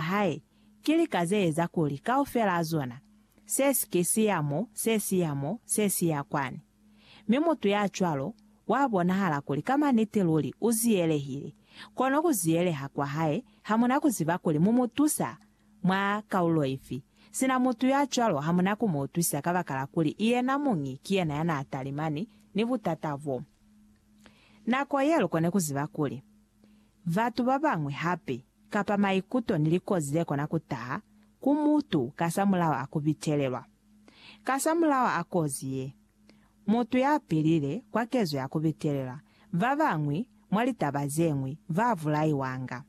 hae, ki lika ze eza kuli kaufela a zona, se si ke si ya mo, se si ya mo, se si ya kwani. Mi mutu ya cwalo, wa bonahala kuli ka maniti luli u ziyelehile, kono ku ziyeleha kwa hae ha mu na ku ziba kuli mu mu tusa mwa kaulo ifi, sina mutu ya cwalo ha mu na ku mu utwisa kabakala kuli yena muñi ki yena ya n'a talimani ni butata bo. Nako ye lu kone ku ziba kuli. batu babañwi hape, kapa maikuto ni likozi zekona kutaha ku mutu kasamulaho a kubitelelwa. Kasamulaho a kozi ye, mutu yapilile kwa kezo ya kubitelelwa, babañwi mwa litaba zeñwi babulaiwanga.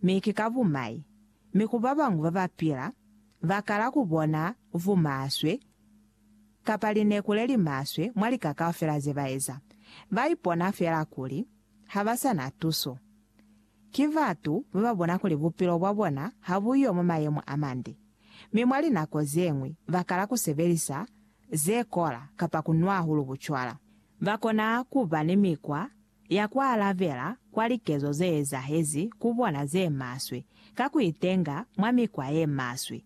Mi ki ka bumai, mi ku babañwi babapila, bakala kubona bumaswe kapa lineku lelimaswe mwa lika kaufela zebaeza. Baipona feela kuli ha ba sa na tuso. Ki batu ba ba bona kuli bupilo bwa bona ha bu yo mwa mayemo a mande, mi mwa linako ze ñwi ba kala ku sebelisa ze kola kapa ku nwa hahulu bucwala. Ba kona ku ba ni mikwa ya ku alabela kwa likezo ze ezahezi ku bona ze maswe ka ku itenga mwa mikwa ye maswe.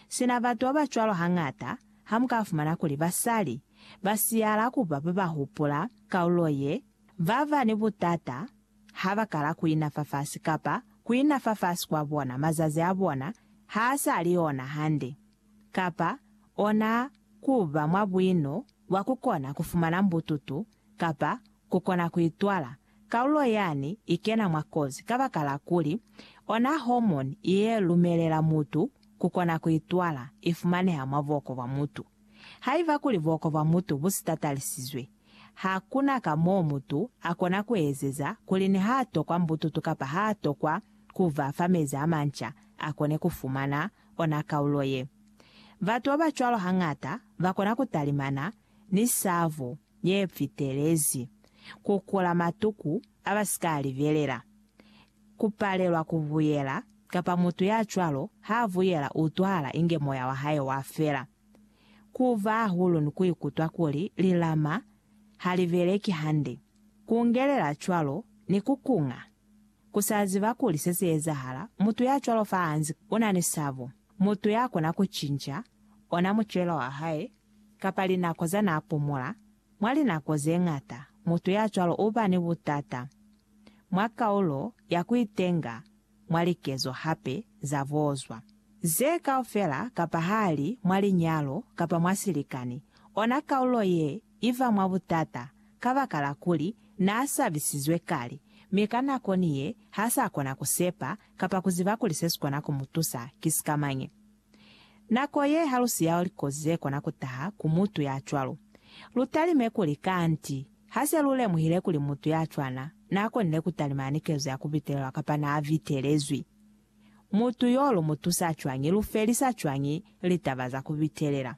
Sina batu ba ba cwalo hañata ha mu ka fumana kuli basali ba siyala ku ba ba ba hupula kaulo ye Ba ba ni butata ha ba kala ku ina fafasi kapa ku ina fafasi kwa bona mazazi a bona ha a sa li ona hande, kapa ona ku ba mwa buino bwa ku kona ku fumana mbututu kapa ku kona ku itwala, kalulo yani i kena mwa kozi kabakala kuli ona hormone ye lumelela mutu ku kona ku itwala i fumaneha mwa buoko bwa mutu. Haiba kuli buoko bwa mutu bu sitatarisizwe, Ha ku na ka mo mutu a kona ku ezeza kuli ni ha tokwa mbututu kapa ha tokwa ku ba fa mezi a manca a kone ku fumana ona kaulo ye. Batu ba ba cwalo hañata ba kona ku talimana ni sabo ye fitelezi, ku kula matuku a ba si ka a libelela, ku palelwa ku buyela, kapa mutu ya cwalo ha a buyela u utwahala inge moya wa hae wa fela. Ku ba hahulu ni ku ikutwa kuli lilama ha li beleki hande, ku ngelela cwalo ni ku kunga. Ku sa ziba kuli se si ezahala, mutu ya cwalo fa hanzi u na ni sabo, mutu ya kona ku cinca ona mucelo wa hae kapa linako za n'a pumula, mwa linako ze ñata mutu ya cwalo u ba ni butata mwa kaulo ya ku itenga mwa likezo hape za bozwa. Ze kaufela kapa hali mwa linyalo kapa mwa silikani, ona kaulo ye i ba mwa butata kabakala kuli n'a sabisizwe kale, mi ka nako ni ye ha s'a kona ku sepa kapa ku ziba kuli se si kona ku mu tusa ki sikamañi. Nako ye halusi ya likozi ze kona ku taha ku mutu ya cwalo. Lu talime kuli, kanti, ha se lu lemuhile kuli mutu ya cwana n'a konile ku talima ni kezo ya ku bitelelwa kapa n'a bitelezwi, mutu y'o lu mu tusa cwañi, lu felisa cwañi litaba za ku bitelela.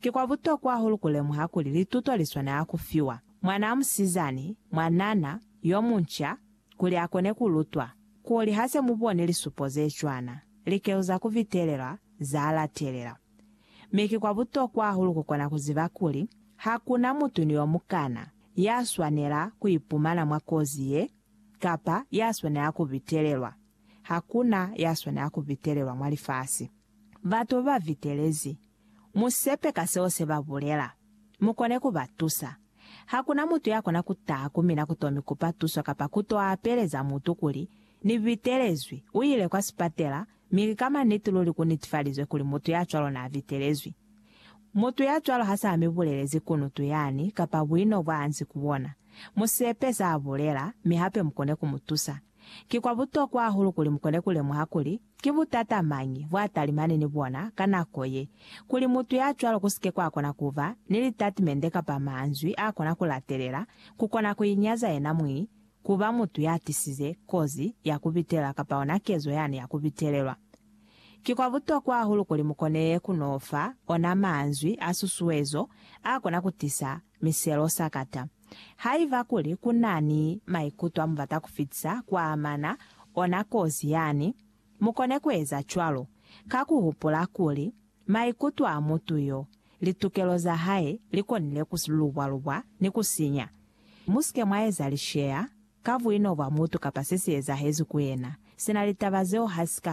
Ki kwa butokwa hahulu ku lemuha kuli lituto li swanela ku fiwa mwanaa musizani, mwanana, yo munca, kuli a kone ku lutwa kuli ha se mu boni lisupo ze cwana likeu za ku vitelelwa za latelela. Mi ki kwa butokwa hahulu ku kona ku ziba kuli ha ku na mutu ni yo mukana ya swanela ku ipumana mwa kozi ye kapa ya swanela ku vitelelwa. Ha ku na ya swanela ku vitelelwa mwa lifasi. Batu ba vitelezi. Mu sepe ka seo se ba bulela. Mu kone ku ba tusa. Hakuna mutu ya kona ku taha ku mina ku to mi kupa tuso kapa ku to apeleza mutu kuli, Ni vitelezwi, u ile kwa sipatela, mi ki ka maniti luli ku nitifalizwe kuli mutu ya cwalo na vitelezwi. Mutu ya cwalo ha sa mi bulelezi kunutu yani kapa buino bwa anzi ku bona. Mu sepe sa bulela, mi hape mu kone ku mu tusa. Ki kwa butokwa hahulu kuli mu kone ku lemuha kuli, Ki butata mañi bwa talimani ni bona ka nako ye, kuli mutu ya cwalo ku si ke kwa kona ku ba ni litatimende kapa manzwi a kona ku latelela, ku kona ku inyaza yena mwi, ku ba mutu ya tisize kozi ya ku bitelela kapa ona kezo yani ya ku bitelelwa? Ki kwa butokwa hahulu kuli mu koneye ku no fa ona manzwi a susuezo a kona ku tisa miselo sakata. Haiba kuli ku na ni maikuto a mu bata ku fitisa ku amana ona kozi yani, mu kone ku eza cwalo ka ku hupula kuli maikuto a mutu yo, litukelo za hae li konile ku lubwa-lubwa ni ku sinya. Mu si ke mwa eza lisheya ka buino bwa mutu kapa se si ezahezi ku yena, sina litaba zeo ha si ka